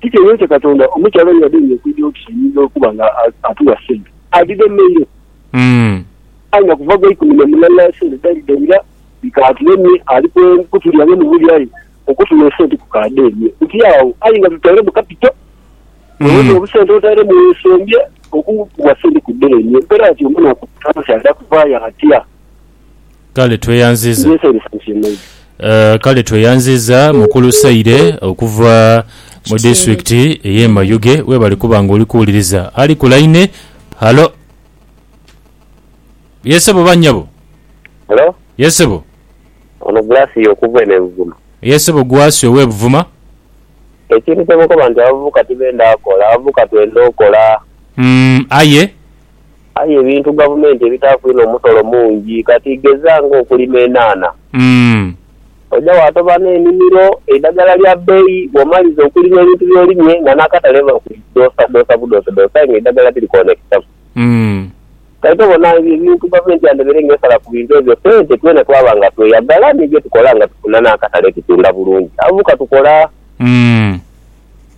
Kiki eyense Katonda omukyala oyo yadhemye okwidha oti ayinza okuba nga atuwa sente? Adhidhemeire. Aye nga kuva gweikumi na mulala sente dalidhaira, bikaatulemye. Ali kutulya nga mubuli aye okutuma esente kukaadhemye. Tuti agho aye nga tutairemu kapito. Weeweta obusente otairemu weesembye, okuwa sente kudhemye. Mperaati omunaku, omukyala kyaidha kuvaayo atya? Kale tweyanziza Kale tweyanziza mukulu Saire okuva mu disitulikiti eye Mayuge webale kuba nga oli kuwuliriza. Ali ku line. Halo. Ye sebo oba nyabo? Halo. Ye sebo. Ono Gracia okuva eno e Buvuma. Ye sebo Gracia owe Buvuma. Ekintu kyemukoba nti abavubuka tibenda kola, abavubuka twenda okola. Aye. Aye ebintu gavumenti ebitaaku inho musolo mungi. Kati geza ng'okulima enhanha. Oja waatoba n'enimiro, eidhagala lya bbeyi, bw'omaliza okulima ebintu by'olimye nga n'akatale biba bikudhosadhosa budhosadhosa aye ng'eidhagala tirikoonekesaaku. Kati tobona ebyo ebintu gavumenti yandebeire ng'esala ku bintu ebyo sente twena twaba nga tweyagala ni bye tukola nga tufuna n'akatale tutunda bulungi. Abavubuka tukola.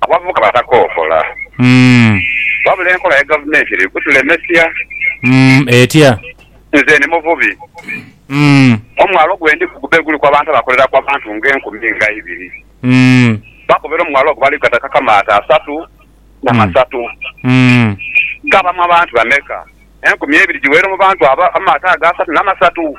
abavubuka batakookola. Wabula enkola ya gavumenti eri kutulemesia. Etya? Nze ndi muvubi. Omwalo gwe ndiku gube guliku abantu abakoleraku abantu nga enkumi nga ibiri. Bakobera omwalo ogwo bali gatakaku amaato asatu na masatu. Gabamu abantu bameka? Enkumi ebiri giweere mu bantu abo amaato ago asatu na masatu?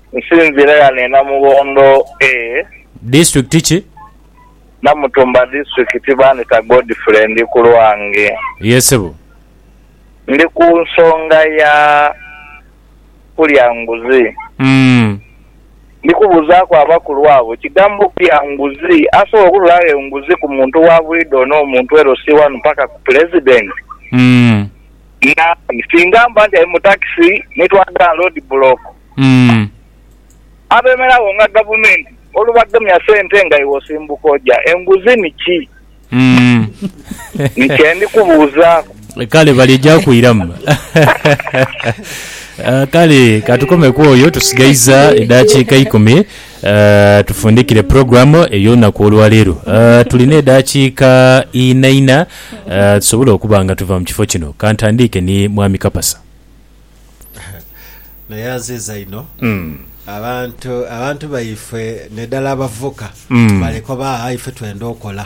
Nsinziire ghano e Namughondo A. Disitulikiti ki? Namutumba Disitulikiti. Bandhita Godfrey. Ndi ku lwange. Ye sebo. Ndi ku nsonga ya kulya nguzi. Umm. Ndi kubuuzaaku abakulu abo, ekigambo okulya nguzi, asobola okutolaagho enguzi ku muntu wa bwidha ono omuntu LC wanu paka ku Pulezidenti? Umm. Naaye, singa mba nti ali mu takisi ni twaadha gha loodi bulooku. abemeragho nga gavumenti olubagemya sente nga iwe osimbuka oja enguzi ni ki? Ni kye ndi kubuuzaaku. Kale bali eja kwiramu. Ah, Kale ka tukome ku oyo, tusigaiza edaakiika ikumi ah, tufundikire puroguramu ey'olunaku olwa leero. Ah, Tulina edaakiika inaina ah, tusobole okuba nga tuva mu kifo kino. Ka ntandiike ni Mwami Kapasa. Naye aziiza inho abantu abantu baifwe nedala abavuka balekoba aah ife twenda okola.